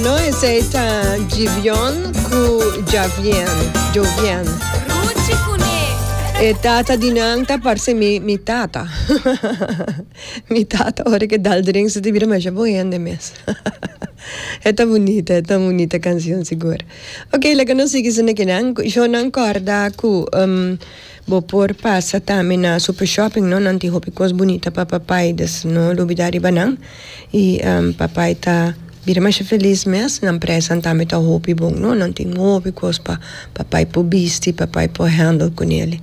No esey ta Gibeon cu Javian, Jovian. Ruchi cu ne. E tata di nan ta parce mi mi tata mi tata ora ke dal drink su ta bira masha bon hende mes e ta bonita e ta bonita cancion sigur ok laga nos sigui su na kinan cu Jonan corda cu um, Bo por pasa tambe na Super Shopping no, nan tin hopi cos bunita pa papay dus no lubida riba nan y papay ta bira masha feliz mes, nan presanan tambe ta hopi bon no, nan tin hopi cos pa papay por bisti, papay por handle cu neli.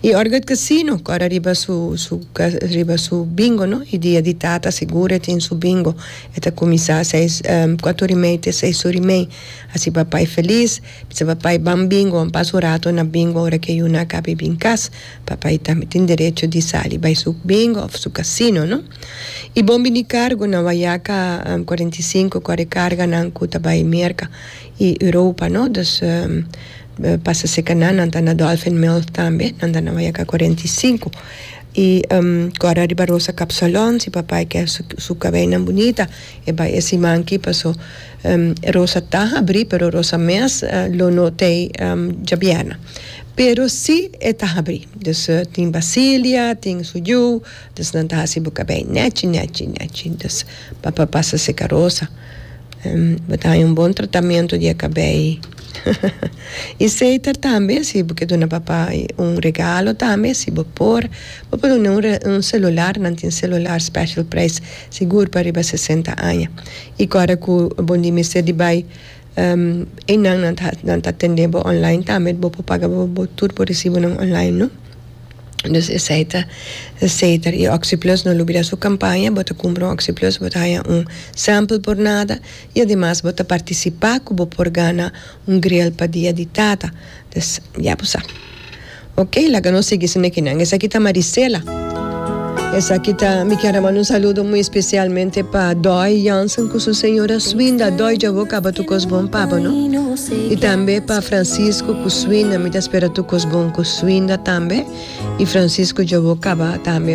Y ora cu e casino cora riba su su riba su bingo no y dia di tata seguro e tin su bingo e ta cuminsa seis cuato ora y mey te seis ora y mey, asi papay feliz. Bisa papai ban bingo an pas un rato na bingo ora ke yuna a kabe bin kas. Papai tambe tin derecho di sali bai su bingo of su kasino no. I bon bini kargo na Wayaka cuarenta y cinco kore karga nan ku ta bai Merka i Europa no dus pasa seka nan nan ta na Dolphin Mill tambe nan ta na Wayaka cuarenta y cinco i kore ariba Rosa Kapsalon si papai ke su su kabeinan bunita e bai e siman ki paso Rosa ta habri pero Rosa mes lo no t'ei djabièrna pero si e ta habri dus tin Basilia tin su yu dus nan ta hasi bo kabei nèchi nèchi nèchi dus pa pa pasa seka Rosa bo ta haña un bon tratamentu di e kabei i seiter tambe si bo ke duna papa un regalo tambe si bo por bo por duna un re un selular nan tin selular special prijs sigur pa riba sesenta aña I kòrda ku bo ni mester di bai einan nan ta nan ta tendé bo online tambe bo por paga bo bo tur bo resibonan online no. Dus esei ta seter i oxiplus no lubida su kampaña bo ta kumpra un oxiplus bo ta haña un sample por nada i ademas bo ta partisipá ku bo por gana un gril pa dia di tata. Des ya bo sa. Ok laga nos sigui esaki esaki nan. Esaki ta Marisela. Esaki ta mi kier a manda un saludo muy especialmente pa Doy Jansen cu su señora su suinda. Doy dja bo caba tur cos bon pa bo no. Y tambe pa Francisco cu suinda mi ta spera tur cos bon cu suinda tambe y Francisco dja bo caba tambe.